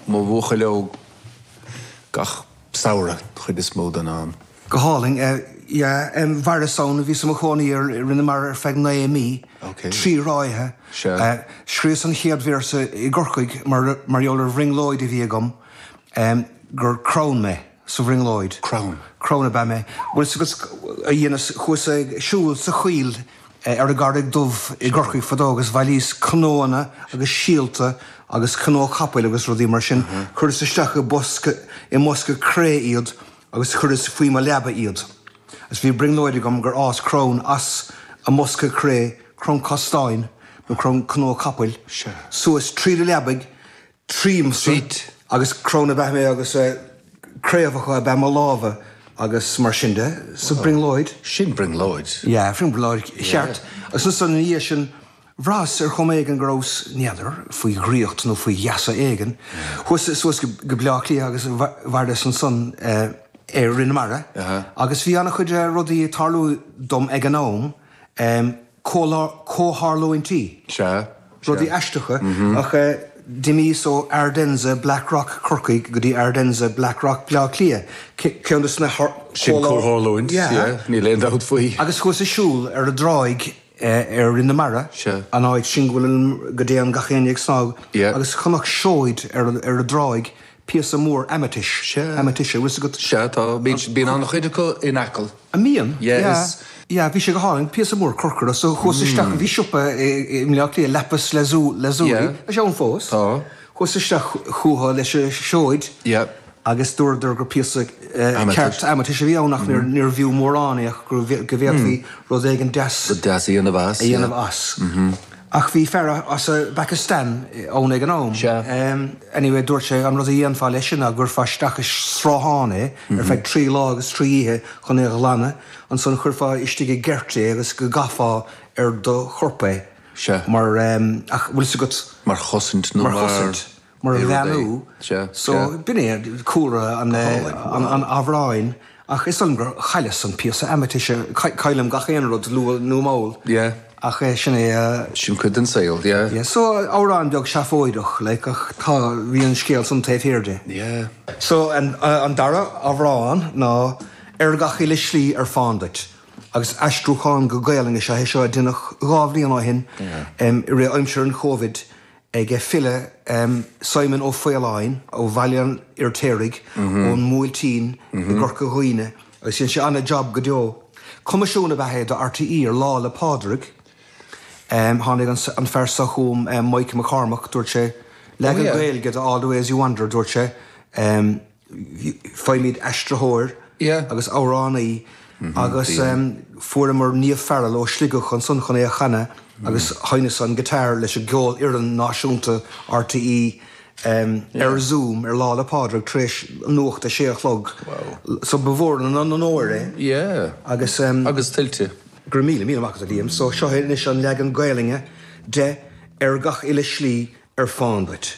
Mo bhuachaill óg gach samhradh chuid is mó den am. Go hálainn, eh, yeah, em, mhaireas ann, bhíos i mo chónaí ar Rinn na Mara ar feadh naoi mí, Ok. trí ráithe, Sure. eh, scríos an chéad véarsa i gCorcaigh mar, mar gheall ar bhrionglóid a bhí agam, em, gur crann mé sa bhrionglóid. Crann. Crann ab ea mé. Bhuel, is éard a dheineas, chuas ag siúl sa choill ar an gCarraig Dhubh i gCorcaigh fadó agus bhailíos cnóanna agus síolta agus cnó capaill agus rudaí mar sin, chuireas isteach i bosca, i mbosca cré iad agus chuireas faoi mo leaba iad. Agus bhí brionglóid agam gur fhás crann as an mbosca cré, crann castáin nó crann cnó capaill, suas tríd an leabaigh tríomsa Feet. agus crann ab ea mé agus craobhacha ab ea mo lámha agus mar sin de. So brionglóid. Sin brionglóid. Yeah, brionglóid cheart. Agus ansan ina dhiaidh sin, bhraitheas ar chuma éigin go rabhas, n'fheadar, faoi dhraíocht nó faoi gheasa éigin. Chuas suas go Bleá Cliath agus mhaireas ansan ar Rinn na Mara agus bhí an-chuid rudaí ag tarlú dom ag an am. comhtharlúintí. Sea, sea. rudaí aisteacha, ach eh d'imíos ó Ardennes, Blackrock, Corcaigh go dtí Ardennes, Blackrock, Bleá Cliath, ceann des na har, Sin comhtharlúint, yeah, níl aon dabht faoi. Agus chuas ag siúl ar an dtráigh eh ar Rinn na Mara, Sea. an áit sin go bhfuil, go go dtéann gach éinne ag snámh, Yeah. agus chonac seoid ar an, ar an dtráigh, píosa mór aimitis, aimitis, an bhfuil 's agat. Sea, tá, bíonn an-chuid acu in Acaill. An mbíonn? Yeah, is. Yeah, bhí sé go hálainn, píosa mór corcra, so chuas isteach, bhí siopa i mBleá Cliath, Lapis Lazuli, Lazuli, tá sé ann fós, tá, chuas isteach chucu leis an seoid agus dúradar gur píosa ceart aimitis a bhí ann ach níorbh fhiú mórán é ach go bhféadfaí rud éigin deas a dhéanamh as. Ach bhí fear as an bPacastáin ann ag an am. Sea. Anyway, dúirt sé, an rud a dhéanfá leis sin ná go gcuirfeá isteach i sruthán é ar feadh trí lá agus trí oíche chun é a ghlanadh, ansan chuirfeá istigh i gceirt é agus go gcaithfeá ar do chorp é. Sea. Mar, ach bhfuil 's agat. Mar chosaint nó mar. Mar chosaint. mar bheannú. So, b'in é cúlra an amhráin ach is dóigh liom gur chailleas an píosa aimitis, caillim gach aon rud, luath nó mall, ach sin é a. Sin cuid den saol, yeah. Yeah, so amhrán beag seafóideach, like, ach tá, bhí an scéal san taobh thiar de. Yeah. So an dara amhrán ná Ar gach uile shlí ar fán duit agus aistriúchán go Gaelainn is ea é seo a deineadh dhá bhliain ó shin i rith aimsir an Chovid. ag an bhfile Simon Ó Faoláin ó Bhaile an Fhirtéaraigh ón mBuailtín i gCorca Dhuibhne agus dhein sé an-jab go deo. Coimisiún ab ea é do RTÉ ar Lá 'le Pádraig. Tháinig an fear seo chugam, Mike McCormack, dúirt sé, leagan Gaeilge de All the Ways You Wander, dúirt sé, Faighimid aistritheoir agus amhránaí agus fuaireamar Niamh Farrell ó Shligeach chun san chun í a chanadh agus sheinneas an guitar leis an gCeolfhoireann Náisiúnta RTÉ ar Zoom ar Lá 'le Pádraig tar éis nuacht a sé a chlog so ba mhór an onóir é agus go raibh míle míle maith agat a Liam so seod é anois an leagan Gaelainne de, Ar Gach Uile Shlí ar Fán Duit.